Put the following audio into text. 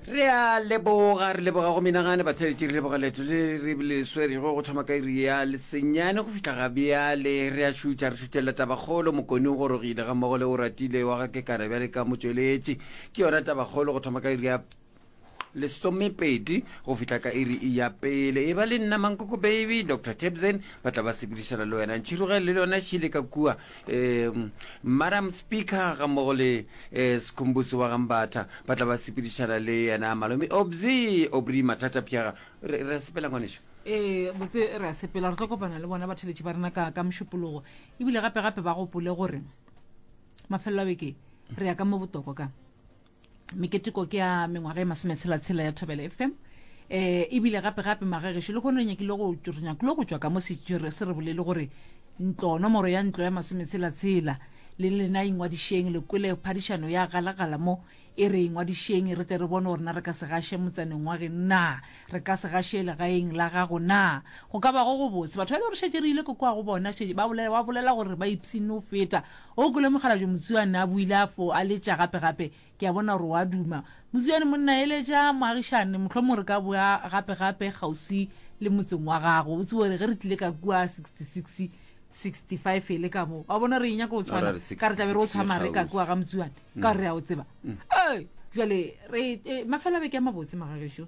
re a leboga re leboga go menagane batheletši re leboga leto le re le swerego go thoma ka iri ya lesenyane go fitlha ga bjale re a šutša re šutšelela tabakgolo mokone o gorogile ga mmogo le o ratile wa ga kekana bjale ka motšweletši ke yona tabakgolo go thoma ka iri ya lesomepedi go fihla ka iri e ya pele e ba le nna mankoko baby dr tebsen ba tla ba sepedišana le wena ntšhirogele le lona šile ka kua um madam speaker ga mmogo le um eh, sekhumbuso wa gambatha ba tla ba sepedišana le yena malome obzi obri mathata pjaga re re a sepela ngwanešo ee eh, botse re a sepela re tlo kopana le bona batheletši ba rena ka ka mošupologo ebile gape gape ba gopole gore mafelelo a beke re ya ka mo botoko ka meketeko ke ya mengwaga e masometshela-tshela ya thobele fm um eh, ebile gape-gape magagešo le kgone re nyakile go re nyakile go tšwa ka mo se re bolele gore ntlo nomoro ya ntlo ya masometshela-tshela le lena ingwadišeng le kwele phadišano ya galagala mo e re ingwadišeng re tle re bone gorena re ka se gaše motsaneng wa geng na re ka se gaše legaeng la gago na go ka bago go botse batho ba le gore šetse re ile ko kwa go bona ba bolela gore ba ipsene o feta O kwele mokgalabje Motsuane a buile a fo a letša gape gape, ke a bona gore o a duma. Motsuane monna, eletša moagišane, mohlomong re ka boa gape gape kgauswi le motseng wa gago. O tsebe gore ge re tlile ka kua 66, 65 e le ka mo, wa bona, re e nyaka go tshwana, Arali ka re tla be re o 66 tshwa le mare ka kua kgauswi. ga Motsuane, ka gore re a o tseba. Ee, bjale re, eh, mafelabeke a mabotse, Magagešo.